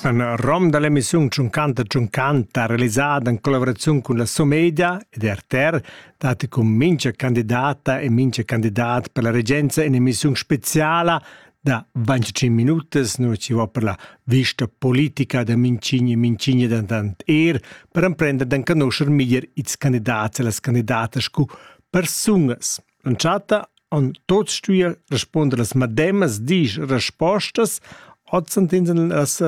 Un rom da l'emissiun Tschunchanta Tschunchanta realisada en collaboraziun cun la Somedia ed RTR datti cun mincha candidata e mincha candidat per la regenza in'emissiun speziala da 25 minutas, nu ci va per la vista politica da Mincigni e Mincigni dentant er per emprender d'enconuscher meglier ils candidats e las candidatas scu persungas. Entschatta han tuts stuì respunder las medemas diesch respostas, ozzandins en las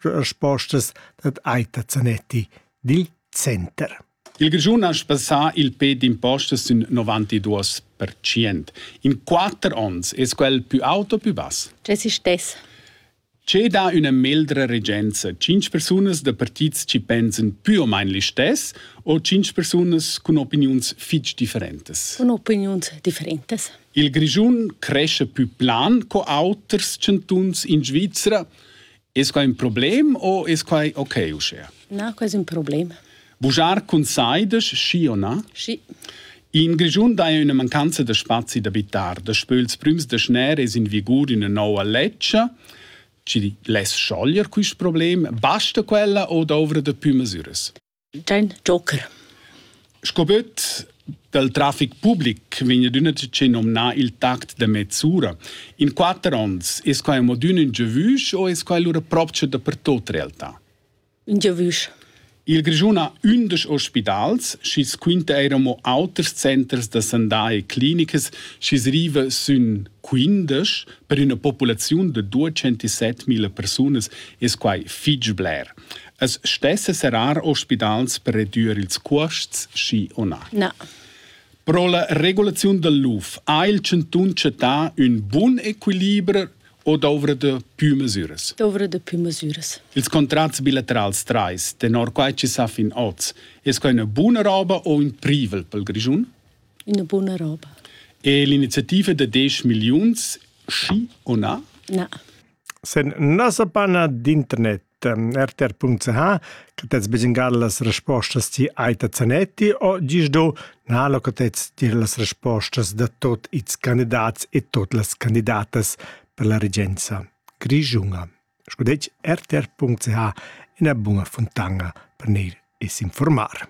respostas dad Aita Zanetti dil center. Il Grischun ha spassà il pe d'impostas sün 92%. In quatter ons es quel pü auto pü bass. Tge si stess? Che dà üna meldra regenza? Tschinch persunas da partits chi pensan pü o main listess o tschinch persunas cun opiniuns fich differentas? Cun opiniuns differentas. Il Grischun crescha pü plan co auters chantuns in Svizra. Es quai ün problem o es quai okay uschea? Na, quai es ün problem. Bugiar cun sai de schi o na? Schi. In Grischun dai üna mancanza da spazi d'abitar. Daspö ils prüms deceners es in vigur üna nouva ledscha chi less schoglier quist problem. Basta quella o dovra da pü masüras? Dein Joker. Sco böt dal trafic public vegna d'üna che nomna il tact da mezz'ura. In quatter ons es quai amo d'ün ün giavüsch o es quai lura propcha dapertot realtà? Un giavüsch. Il Grischun ha ündesch ospidals, schi's quinta eir amo auters centers da sandà e clinicas, schi's riva sün quindesch per üna populaziun da 207.000 persunas es quai fich bler. Es stessa serrar ospidals per redüer ils cuosts, schi o na? Na. Pro la regulaziun dal luf ha il chantun chattà ün bun equiliber o dovra da pü masüras? Dovra da pü masüras. Ils contrats bilaterals trais, tenor quai chi s'ha fin hoz, es quai üna buna roba o ün privel pel Grischun? Üna buna roba. E l'iniziativa da 10 milliuns, schi o na? Na. Se n'asa pas nat d'internet rtr.ch che tets besengar las respostas ti Aita Zanetti o gis do na lo che tets dir las respostas da tot ils candidats e tot las candidatas per la regenza grischunga. Scudec rtr.ch ina buna fontana per neir e s'informar.